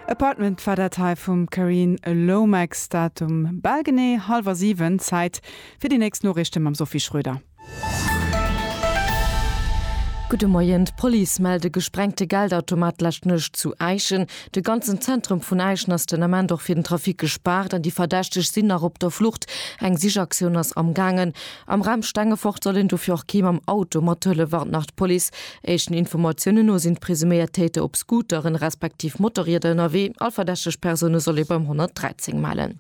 Apartment war dat hei vum Carine Lomax. Dat um bal genee hallwer 7. Zäit fir déi nächst Noriichte mam Sophie Schröder. Gudde Moien, D'Police mellt e gesprengte Geldautomat d'lescht Nuecht zu Äischen. De ganzen Zentrum vun Äischen ass den Ament och fir den Trafic gespaart an déi Verdächteg sinn nach op der Flucht. Eng Sichaktioun ass amgaangen. Am Raum Stengefort soll een dofir och kee mam Auto mathëllef, warnt nach d'Police. Éischten Informatiounen no sinn d'presuméiert Täter op Scooteren, respektiv Motorrieder ënnerwee. All verdächteg Persoune soll ee beim 113 mellen.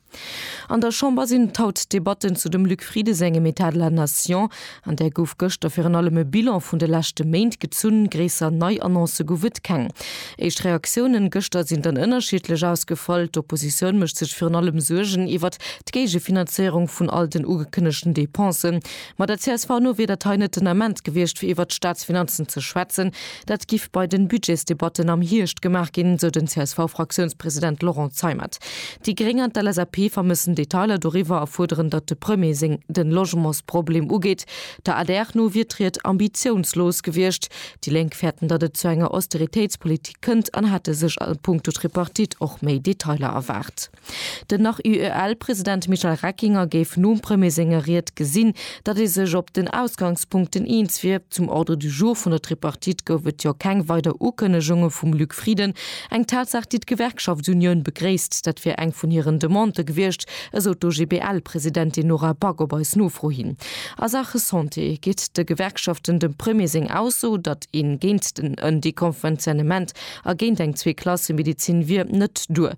An der Chamber sinn et haut d'Debatten zu dem Luc Frieden sengem État de la nation. An där gouf gëschter virun allem e Bilan vun de leschte Méint gezunn. Gréisser nei Annoncë gouf et keng. Éischt Reaktiounen gëschter sinn dann ënnerschiddlech ausgefall. D'Oppositioun mécht sech virun allem Suergen iwwert d'Géigefinanzéierung vun all den ugekënnegten Dépensen, ma der csv no wier dat hei net den Ament gewiescht fir iwwert d'Staatsfinanzen ze schwätzen, dat giff bei den Budgetsdebatten am Hierscht gemaach ginn, sou den CSV-Fraktiounspresident Laurent Zeimet. Déi Gréng an d'LSAP vermëssen Detailer doriwwer a fuerderen, datt de Premier seng den Logementsproblem ugeet. Der adr no wier d'Ried ambitiounslos gewiescht. Déi Lénk fäerten, datt et zu enger Austeritéitspolitik kënnt an hätte sech a puncto Tripartite och méi Detailer erwaart. Den nach UEL-President Michel Reckinger géif nom Premier senger Ried gesinn, datt ee sech op den Ausgangspunkten eens wier. Zum Ordre du jour vun der Tripartite gouf et jo keng weider Ukënnegunge vum Luc Frieden. Eng Tatsaach, déi d'Gewerkschaftsunioun begréisst. Dat wier eng vun hiren Demandë gewiescht, esou d'OGBL-Presidentin Nora Back op eis Nofro hin. A Saache Santé geet de Gewerkschaften dem Premier seng Ausso, datt een géint den Deconventionnement A géint eng Zweeklassemedezin wier net duer.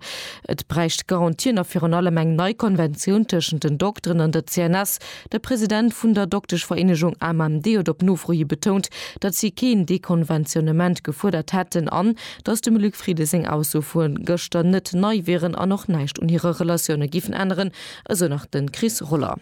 Et bräicht Garantien a virun allem eng nei Konventioun tëschent den Dokteren an der CNS. De President vun der Dokteschvereenegung AMMD huet op Nofro hi betount, datt si keen Dekonventionnement gefuerdert hätten an datt dem Luc Frieden seng Ausso vu gëschter net nei wieren an och näischt un hire Relatioune giffen änneren, esou nach de Chris Roller.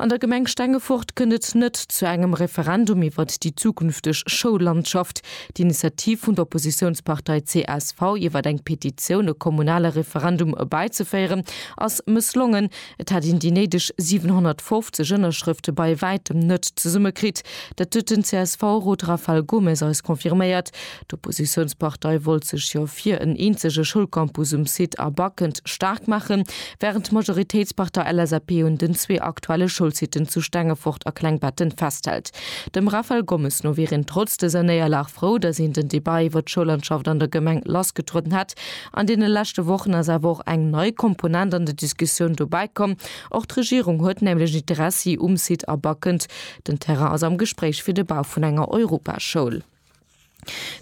An der Gemeng Stengefort kënnt et net zu engem Referendum iwwert déi zukünfteg Schoullandschaft. D'Initiativ vun der Oppositiounspartei csv, iwwert eng Petitioun e kommunale Referendum erbäizeféieren, ass mësslongen. Et hat een déi néideg 750 Ënnerschrëfte bei wäitem net zesummekritt. Dat huet den CSV-Rot Rafael Gomes eis confirméiert. D'Oppositiounspartei wollt sech jo fir en eenzege Schoulcampus um Site A Backend staark maachen, wärend d'Majoritéitspartei LSAP un den zwee aktuelle Schoulsiten zu Stengefort a Klengbetten festhält. Dem Raphaël Gommes no wier een trotz dëser Néierlag frou, datt een den Debat iwwer d'Schoulandschaft an der Gemeng lassgetrueden hätt. An deene leschte Wochen ass awer och eng nei Komponent an de Diskussioun dobäi komm. Och d'Regierung huet nämlech Interessi um Site A Backend. Den Terrain ass am Gespréich fir de Bau vun enger Europaschoul.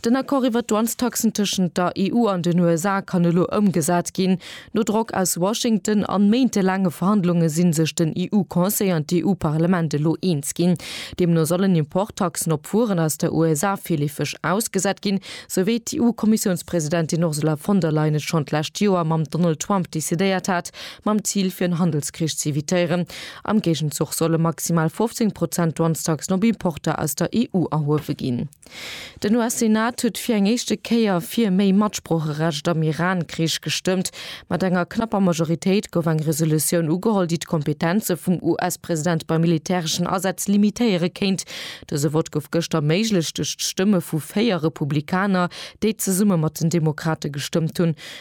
Den Accord iwwer d'Douanestaxen tëschent der EU an den USA kann elo ëmgesat ginn. No Drock aus Washington an méintelaange Verhandlunge sinn sech den EU-Conseil an d'EU-Parlament elo eens ginn. Deemno sollen Importtaxen op Wueren aus der USA virleefeg ausgesat ginn, sou wéi d'EU-Kommissiounspresidentin Ursula von der Leyen et schonn d'lescht Joer mam Donald Trump decidéiert hat, mam Zil fir en Handelskrich z'evitéieren. Am Géigenzuch solle maximal 15 Prozent Douanestaxen op Importer aus der EU erhuewe ginn. Den US-Senat huet fir eng éischte Kéier fir méi Matsproocherecht am Iran-Krich gestëmmt. Mat enger knapper Majoritéit gouf eng Resolutioun ugeholl, déi d'Kompetenze vum US-President bei militäreschen Asätz limitéiere kéint. Dëse Vott gouf gëschter erméiglecht duerch d'Stëmme vu véier Republikaner, déi zesumme mat den Demokrate gestëmmt hunn.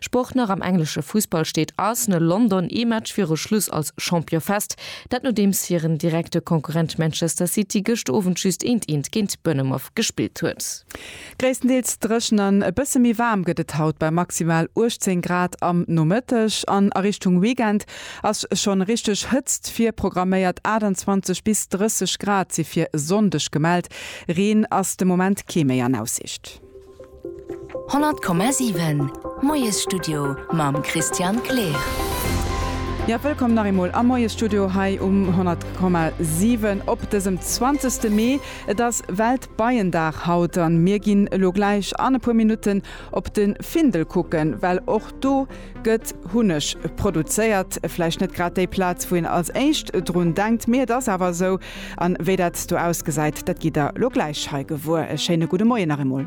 Sport Nach am englesche Fussball steet Arsenal London ee Match viru Schluss als Champion fest. Dat nodeems hiren direkte Konkurrent Manchester City gëscht Owend just eent eent géint Bournemouth gespillt huet. Gréisstendeels dréchen an e bësse méi waarm gëtt et haut bei maximal 18 Grad am Nomëtteg an a Richtung Weekend ass schonn richteg Hëtzt virprogramméiert, 28 bis 30 Grad si fir e Sonndeg gemellt. Reen ass de Moment kee méi an Aussicht. 100,7 Moiesstudio mam Christian Kleer. Jo, wëllkomm nach eemol am Moiesstudio hei um 100,7 op dësem 20 Mee. Et ass Weltbeiendag haut an mir ginn elo gläich an e puer Minutten op de Findel kucken, well och do gëtt Hunneg produzéiert. Vläicht net grad déi Plaz, wou een als éischt drun denkt, mee et ass awer esou, An wéi dat do ausgesäit, dat gitt der elo gläich hei gewuer. E schéine gudde Moien nach eemol.